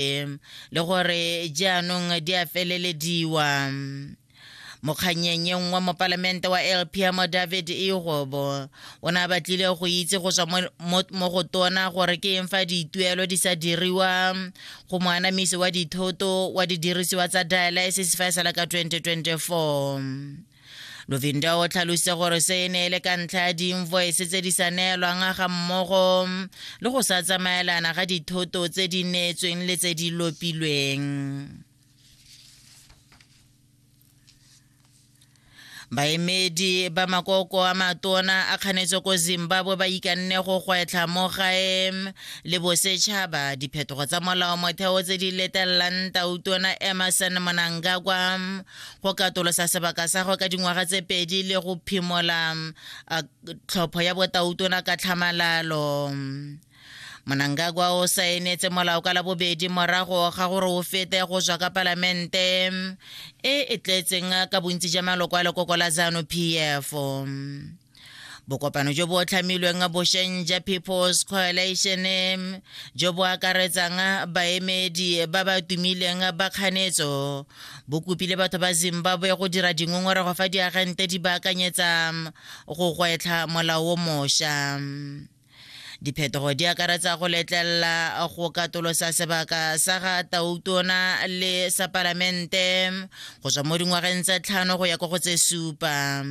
gape le gore jaanong di a felelediwa mokganyeng wa mopalamente wa lpm david igobo o ne a batlile go itse go tswa mo go tona gore ke eng fa dituelo di sa diriwa go moanamisi wa dithoto wa didirisiwa tsa dialysis fa e sala ka 2024 lovinda o tlhalositse gore se e ne e le ka ntlha ya diinvoice tse di sa neelwang ga mmogo le go sa tsamaelana ga dithoto tse di neetsweng le tse di lopilweng baemedi ba makoko a matona a kganetse ko zimbabwe ba ikanne go gwetlha mo gae le bosetšhaba diphetogo tsa molao motheo tse di letelelang tautona emerson monangagwa go katolosa sebaka sa go ka dingwaga tse pedi le go phimola tlhopho ya botautona ka tlhamalalo monangagwa o saenetse molao ka labobedi morago ga gore o fete go tswa ka palamente e e tletseng ka bontsi ja maloko a lekoko la zanu p f bokopano jo bo tlhamilweng bosheng ja people's coalition jo bo akaretsang baemedi ba ba tumileng ba kganetso bo kopile batho ba zimbabwe go dira dingongorego fa diagente di baakanyetsa go gwetlha molao o mošwa Diphetogo di akaretsa go letlelela go katolosa sebaka sa ga tautona le sa palamente go tswa mo dingwageng tse tlhano go ya kwa go tse supa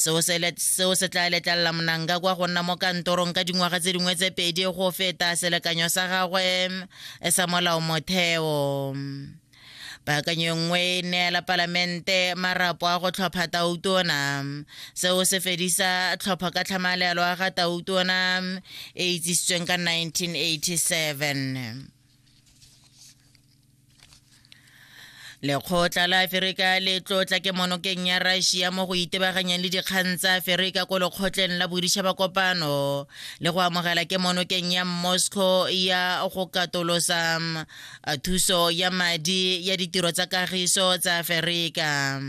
seo se tla letlelela monanga kwa go nna mo kantorong ka dingwaga tse dingwe tse pedi go feta selekanyo sa gagwe sa molao motheo Paakanyo nngwe e neela Palamente marapo a go tlhopha tautona. Seo se fedisa tlhopho ka tlhamalelo a ga tautona e itsisitsweng ka 1987. lekgotla la aferika le tlotla ke monokeng ya russia mo go itebaganyang le dikgang tsa aferika ko lekgotleng la boditšhaba kopano le go amogela ke monokeng ya moscow ya go katolosa a thuso ya madi ya ditiro tsa kagiso tsa aferika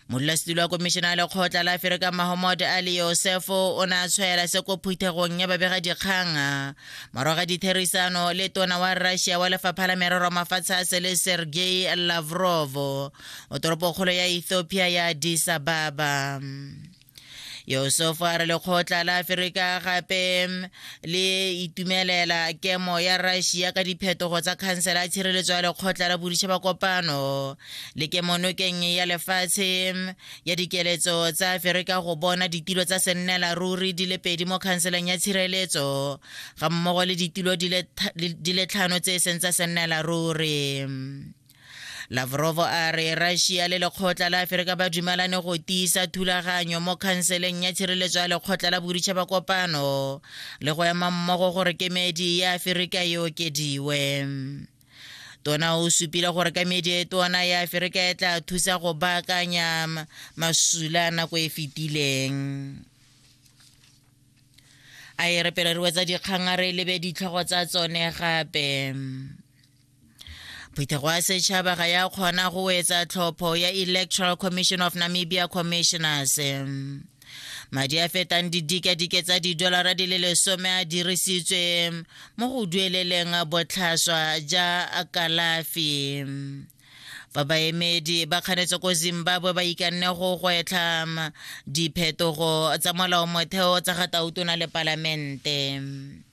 modulasetilo wa komišene ya lekgotla la aferika mahomod ali yosefo o ne a tshwaela se ko phuthegong ya babega dikgang morago ga ditherisano le tona wa russia wa lefapha la merero mafatshe a sele sergei lavrov o toropokgolo ya ethiopia ya disababa yosefa a re lekgotla la aferika gape le itumelela kemo ya russia ka diphetogo tsa khansela ya tshireletso ya lekgotla la boditšha ba kopano le kemonokeng ya lefatshe ya dikeletso tsa aferika go bona ditilo tsa sennela ruri di le pedi mo khanseleng ya tshireletso ga mmogo le ditilo di le tlhano tse e seng tsa sennela ruri lavrov a re russia le lekgotla la aferika ba dumalane go tiisa thulaganyo mo khanseleng ya tshireletso ya lekgotla la boditšhaba kopano le go ema mmogo gore kemedi ya aferika e okediwe tona o supile gore kemedi e tona ya aferika e tla thusa go baakanya masula nako e fetileng a e re pele re wetsa dikgang a re lebe ditlhogo tsa tsone gape phutego ya setšhaba ga ya kgona go etsa tlhopho ya electoral commission of namibia commissioners madi a fetang didikadike tsa didolara di le lesome a dirisitswe mo go dueleleng botlhaswa ja kalafi fa baemedi ba kganetse ko zimbabwe ba ikanne go gwetlha diphetogo tsa molao motheo tsa ga tautona le palamente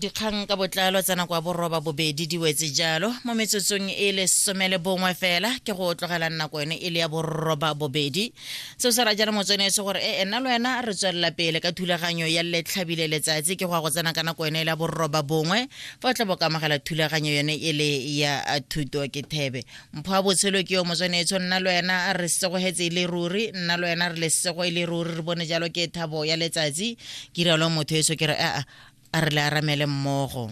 dikgang ka botlalo tsa nako ya boroba bobedi di wetse jalo mo metsotsong e le somele bongwe fela ke go tlogela nako yone e le ya boroba bobedi seo se ra jalo motswenetse gore e ena le wena re tswelela pele ka thulaganyo ya letlhabile letsatsi ke go ya go tsena ka nako yone e le ya boroba bongwe fa o tla bo ka amogela thulaganyo yone e le ya thuto ke thebe mpho a botshelo ke yo motshwanetso nna le wena re setsegogetse e le ruri nna le wena re le setsego e le ruri re bone jalo ke thabo ya letsatsi ke rialo motho eso ke re a re le aramele mmogo